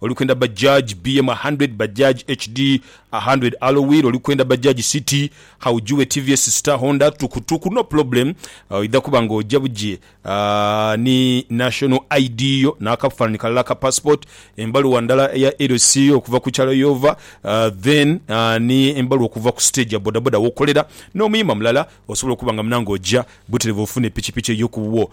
oli kwenda Bajaj BM a hundred, Bajaj HD a hundred, Alloy wheel oli kwenda Bajaj City, Haujue tvs Star Honda, Tuku Tuku no problem, oidha kuba nga oja buji ni National ID yo n'akafanhanhi kalala aka Passport, embaluwa ndala eya LC yo okuva ku kyalo y'ova then ni embaluwa okuva ku stage ya bodaboda w'okolera n'omuyima mulala osobola okuba nga munange oja buterevu ofune pikipiki eyo ku wuwo.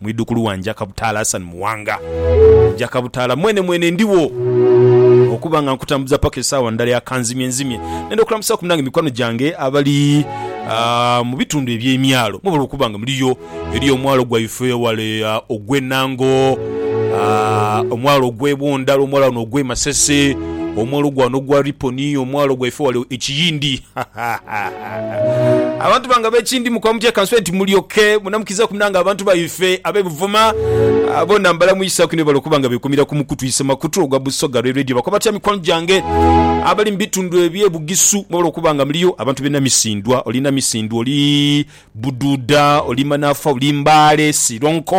Mwidhukulu wa Njakabutaala Hassan Muwanga. Njakabutaala mwene mwene ndhiwo okuba nga nkutambuza paka esaawa ndala ya kanzimye nzimye. Nenda okulamusaku munange mikwano gyange abali mu bitundu eby'emyalo mwebale okuba nga muliyo. Eriyo omwalo gwaife wale ogwe Nango, omwalo ogwe Bwondala, omwalo wano ogwe Masese, omwalo gwano ogwa Riponi, omwalo gwaife wale e Kiyindi. Abantu bange ab'ekindi mukoba mutya ka nsobe nti mulyoke munamukiriza kumina nga abantu baife ab'e Buvuma bona mbalamuisaku inho webale okuba nga bekumira ku mukutu isemakutu ogwa Busoga Lwe Radio. Bakoba batya mikwano gyange abali mu bitundu eby'e Bugisu mwebale okuba nga muliyo? Abantu b'e Namisindwa, oli Namisindwa oli Bududa, olimba nafa oli mbale silonko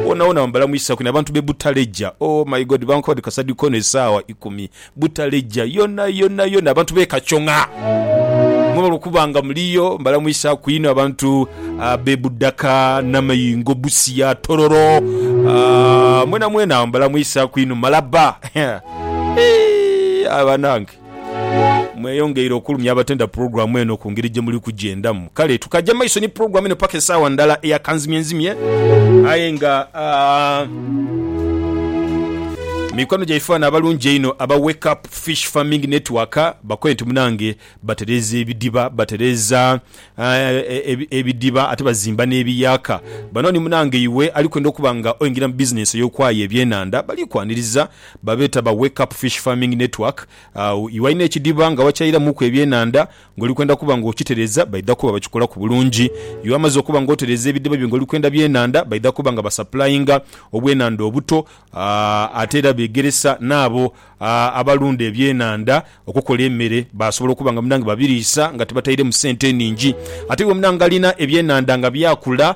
wonawona wambala mwisaku nabantu be butaleja ooh my God bankole kasadikono esawa ikumi butaleja yona yona yona abantu be kachonga mwebale okuba nga muliyo mbala mwisaku inho abantu be budaka, namayingo, busia, tororo aah mwena mwena mbala mwisaku inho malaba eeh banange. Mweyongeire okulumya abatenda pulogulaamu eno ku ngeri gye muli kugyendamu. Kale tukaja maiso ni pulogulaamu eno paka esaawa ndala eya kanzimyenzimye. Aye nga, aah, mikwano gyaife bano abalungi einho aba Wake Up Fish Farming Network bakole nti munange batereeza ebidiba, batereeza, aah, ebidiba ate bazimba n'ebiyaaka. Bano ni munange iwe ali kwenda okuba nga oingira mu bizinensi ey'okwaayo ebyenanda, bali kwaniriza. Babeeta ba Wake Up Fish Farming Network. Iwe alina ekidiba nga wakyairamuku ebyenhandha nga oli kwenda kuba nga okitereza, baidha kuba bakikolaku bulungi. Iwe amaze okuba nga otereza ebidiba byo nga oli kwenda byenhandha, baidha kuba nga basapulainga obwenhandha obuto ate era begeresa n'abo abalunda ebyenhandha okukola emere basobola okuba nga munange babiriisa nga tibatairemu sente nhingi. Ate iwe munange alina ebyenhandha nga byakula,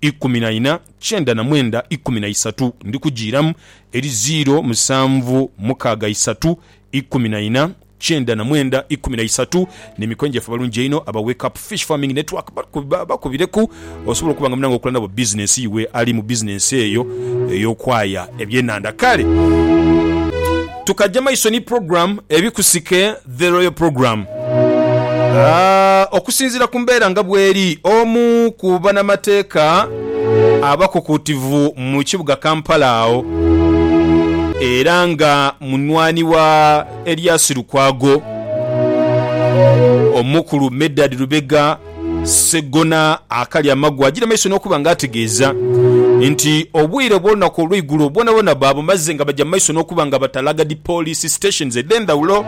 ikumi na ina, kyenda na mwenda ikumi na isatu, ndi kujiiramu eri ziiro musanvu mukaaga isatu, ikumi na ina, kyenda na mwenda ikumi na isatu. N'emikono gyaffe abalungi einho aba Wake Up Fish Farming Network bakubireku osobole okuba nga munange okola nabo bizinensi iwe ali mu bizinensi eyo ey'okwaya ebyenhandha. Kale tukaja maiso ni pulogulaamu Ebikusike. The Royal Programme. Okusinziira ku mbeera nga bweri, omu ku banamateeka abakukuutivu mu kibuga Kampala agho era nga munwani wa Erias Lukwago, Omukulu Medard Lubega, Seggona akali amagu agira maiso n'okuba nga ategeeza nti obwire obw'olunaku olw'eigulo bwonabwona baabumaze nga baja mu maiso n'okuba nga batalaaga dhi poliisi stations edh'endhawulo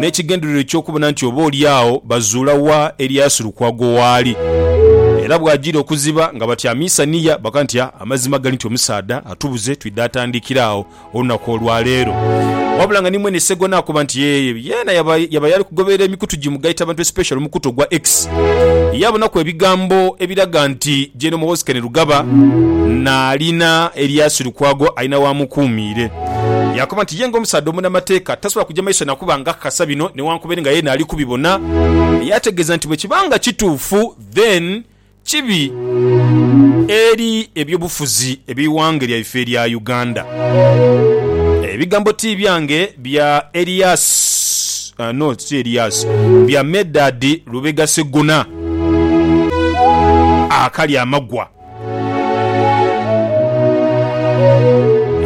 n'ekigendererwa eky'okubona nti oba oli agho bazuula wa Elias Lukwago waali era bw'ajiire okuziba nga batyamiisa niya bakaga nti amazima gali nti omusaadha atubuze twidha atandikira agho olunaku olwa leero. Wabula nga ni mwene Ssegona akuba nti yee, yeena yaba yaba yali kugoberera emikutu gi mugaita bantu especially omukutu ogwa X, yaabonaku ebigambo ebiraga nti Gen Muhoozi Kainerugaba naalina eryaasi Lukwago alina w'amukuumiire. Yaakoba nti ye ng'omusaadha omunamateeka tasobola kuja maiso na kuba ng'akakasa bino newankubere nga yeena ali kubibona. Yaategeeza nti bwe kiba nga kituufu then Kibi eri eby'obufuzi eby'eighanga lyaife erya Uganda. Ebigambo ti byange bya Elias no si Elias, bya Medard Lubega Seggona akali amagwa.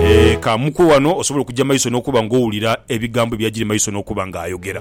Eeh ka mukwe wano osobole okuja maiso n'okuba nga owulira ebigambo ebyajiri maiso n'okuba nga ayogera.